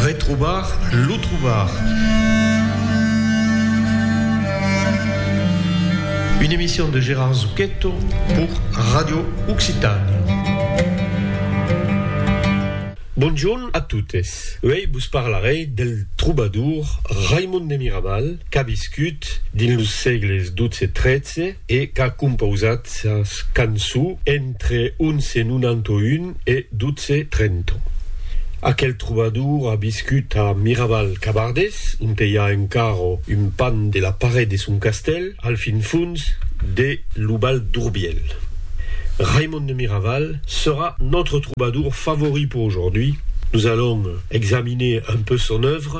Retrobar lo trobar. Une emission de Gérard Zucchetto pour Radio Occitània. Bonjorn a totes. Uèi vos parlarèi del trobador Raimon de Miraval qu'a viscut dins los sègles 12 e 13, e qu'a compausat sas canço entre 1191 e 1230. Aquel trobador a viscut a Miraval-Cabardés, onte i a encara un pan de la paret de son castèl, al fin fons de lo Val d'Urbièl. Raimond de Miraval serà nòtre trobador favori per aujourd'hui. Nos allons examiner un peu son œuvre.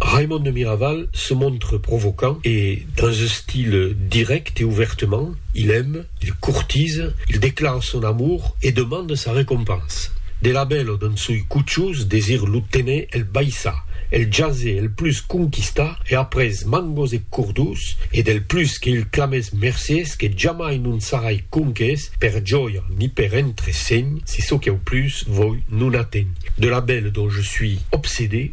Raimond de Miraval se montre provocant e dans un style direct et ouvertement, il aime, il courtise, il declare son amour et demande sa recompense. De la bèla dans soi cuchus desir lo tener el baissa, el jase el plus conquista e après mangos e cordus e del plus que il clamès mercies que jamai non sarai conques per jòia ni per entresegn si çò qu'au plus voi non atègn de la bèla dont je suis obsédé.